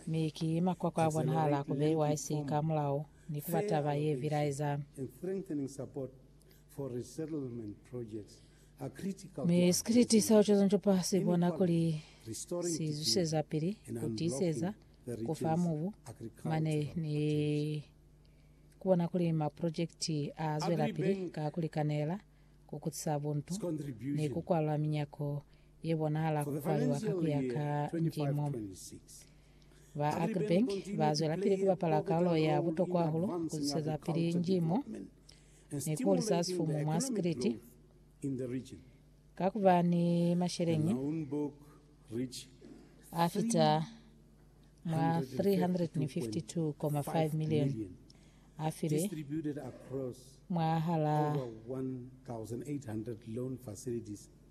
Mi ki makwakwa a bonahala ku beiwa isi ka mulao ni ku ba taba ye bilaeza, mi sikiliti sa ucozoncopwa si bona kuli si zwiseza pili ku tiiseza, ku fa mubu, mane ni ku bona kuli maprojekiti a zwelapili ka ku likanela, ku kutisa buntu, ni ku kwalula minyako ye bonahala ku kwaliwa ka ku ya ka ndimo. Ba Agribank ba zwelapili ku bapala kalulo ya butokwa hahulu ku zwezapili ndimo ni ku hulisa sifumu mwa Sikiliti. Ka ku ba ni masheleñi a fita mwa 352.5 milioni a filwe mwahal'a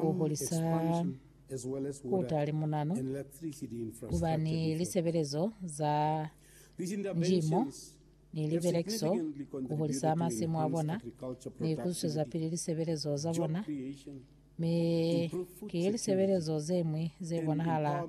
ku hulisa ku utali munanu ku ba ni lisebelezo za njimo ni libelekiso, ku hulisa masimu a bona, ni ku zwezapili lisebelezo za bona. Mi ki lisebelezo ze ñwi ze bonahala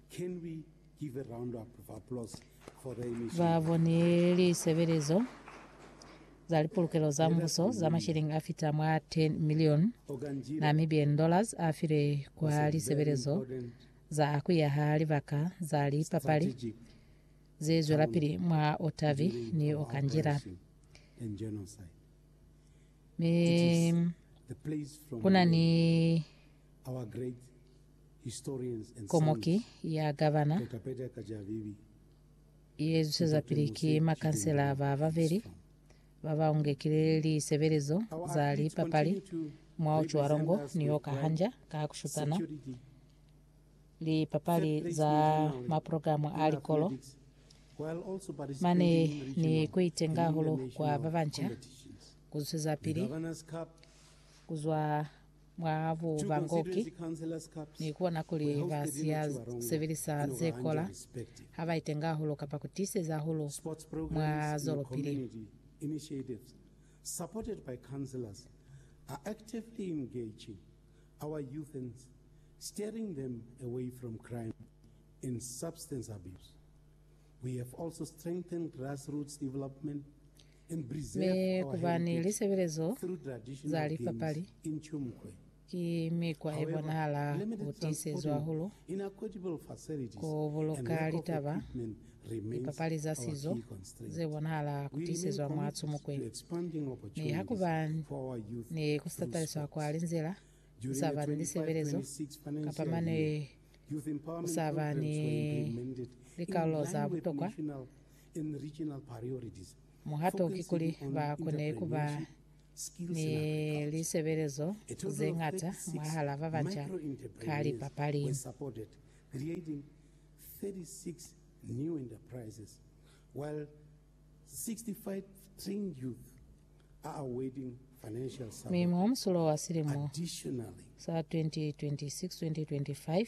Ba boni lisebelezo za lipulukelo za mbuso za mashilingi a fita mwa 10 milioni Namibian dollars a filwe kwa lisebelezo za ku yaha libaka za lipapali ze zwelapili mwa Otavi ni Okanjira. Mi kuna ni Komoki ya Gavana ye zwisezapili ki makansela ba babeli ba ba ungekile lisebelezo za lipapali mwa u cwalo ngo ni yo ka hanja ka ku shutana lipapali za maprogramu a likolo mane ni ku itenga hahulu kwa ba banca ku zwisezapili ku zwa mwa bu ba Ngoki, ni ku bona kuli ba siya sebelisa ze kola ha ba itenga hahulu kapa ku tiiseza hahulu mwa zwelopili. Mi ku ba ni lisebelezo za lipapali ki mikwa ye bonahala ku tiisezwa hahulu ku buluka litaba. Lipapali za sizo ze bonahala ku tiisezwa mwa Tsumukwe, mi ha ku ba ni ku tataliswa kwa linzila ku sa ba ni lisebelezo kapa mane ku sa ba ni likarolo za butokwa Muhato kikuli ba kone ku ba ni lisebelezo ze ñata mwahal'a ba banca ka lipapali. Mi mwa musulo wa silimo sa 2026-2025,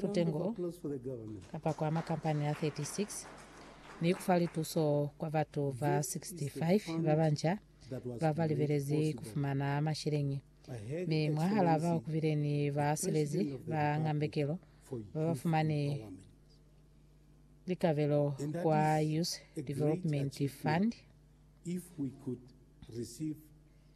putengo kapa kwa makampani a 36 ni kufa lituso kwa batu ba 65 babanca babalibelezi kufumana masheleñi, mi mwahalaa bao kubile ni basilezi ba ngambekelo babafumani likabelo kwa Youth Development Fund.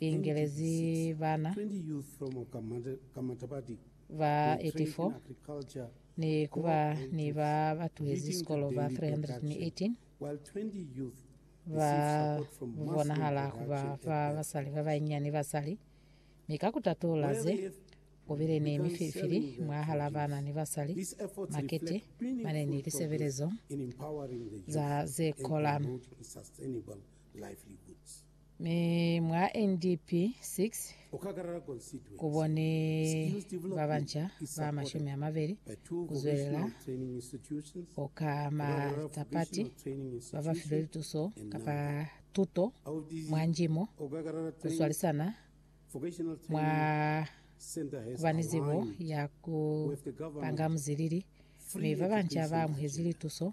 ingelezi bana ba 84 ni ku ba ni ba ba tuhezi sikolo ba 318 ba bonahala ku ba fa basali ba banyinyani basali. Mi ka ku tatula ze, ku bile ni mifilifili mwahal'a bana ni basali, makete mane ni lisebelezo za ze kola. livelihoods. Mi mwa NDP 6 ku bo ni ba banca ba mashumi a mabeli ku zwelela ku ka matapati ba ba filwe lituso kapa tuto mwa njimo ku swalisana mwa ku ba ni zibo ya ku panga muzilili, mi ba banca ba amuhezi lituso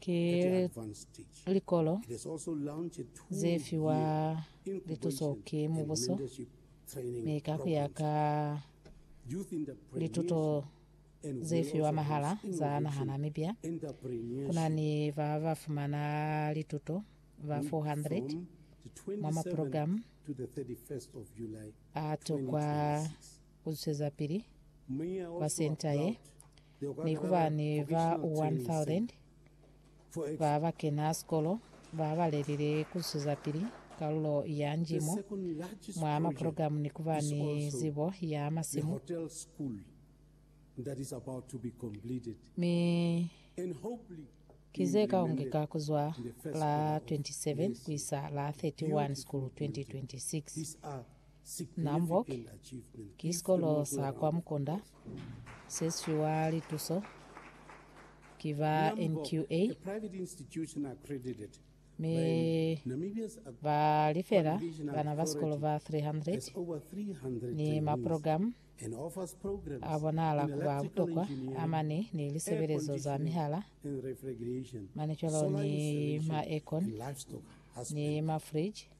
Ki likolo ze fiwa lituso ki mubuso, mi ka ku ya ka lituto ze fiwa mahala za naha Namibia, ku na ni ba ba fumana lituto ba 400 mwa maprogramu a tokwa ku zwezapili kwa senta ye, Ni ku ba ni ba 1,000 ba ba kena sikolo ba ba lelile ku zwezapili kalulo ya njimo mwa maprogramu ni ku ba ni zibo ya masimu, mi ki ze ka ongeka ku zwa la 27 ku isa la 31 Sikulu 2026. Namboc ki sikolo sa kwa Mukunda se sifiwa lituso ki ba NQA mi ba lifela bana ba sikolo ba 300 ni maprogramu a bonahala ku ba butokwa a mane ni lisebelezo za mihala mane cwalo ni ma aircon ni mafriji.